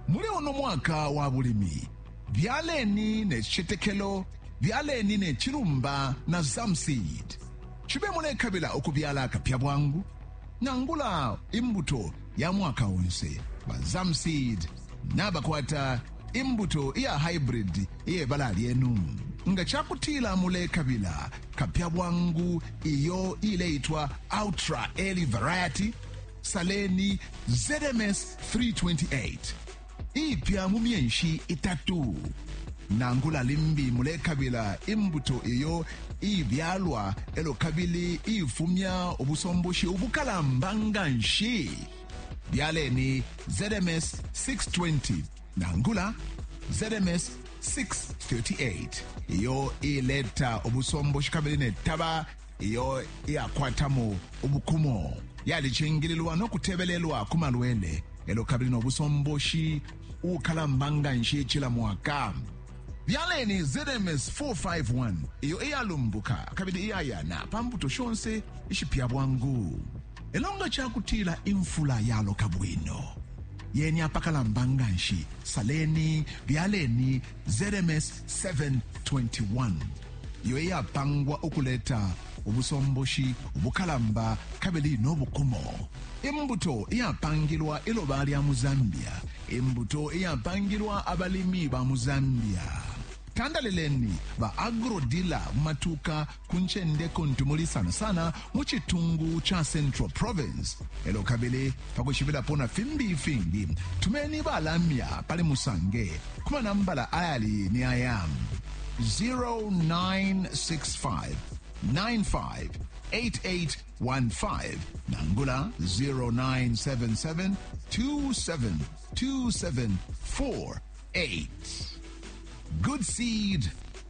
Muli uno mwaka wa bulimi, byaleni ne citetekelo, byaleni ne cilumba na Zamseed. Cibe mulekabila ukubyala akapya bwangu nangula imbuto ya mwaka onse, ba Zamseed nabakwata imbuto iya hybrid iye bala lyenu. Nga ca kutila mulekabila kapya bwangu iyo ileitwa Ultra Early Variety, Saleni ZMS 328 ipya mu myenshi itatu nangula limbi mulekabila imbuto iyo ibyalwa elo kabili ifumya ubusomboshi ubukalamba nga nshi byaleni ZMS 620 nangula ZMS 638 iyo ileta ubusomboshi kabili netaba iyo iyakwatamo ubukumo yalicingililwa no kutebelelwa ku malwele elo kabili no busomboshi ukalamba nga nshi cila mwaka byaleni zms 451 iyo iyalumbuka kabili iyayana pa mbuto shonse ishipya bwangu elo nga cakutila imfula yaloka bwino yeni apakalamba nga nshi saleni byaleni ZMS 721 iyo iyapangwa ukuleta ubusomboshi ubukalamba kabili no bukumo imbuto iyapangilwa iloba lya mu zambia imbuto iyapangilwa abalimi ba mu zambia tandalileni ba agrodila mu matuka ku ncende kuntu muli sana sana mu citungu ca Central Province. E lyo kabili pa kwishibilapo na fimbi ifingi, tumeni balamya pali Musange ku manambala ayali ni aya 0965 958815 nangula 0977 272748. Good seed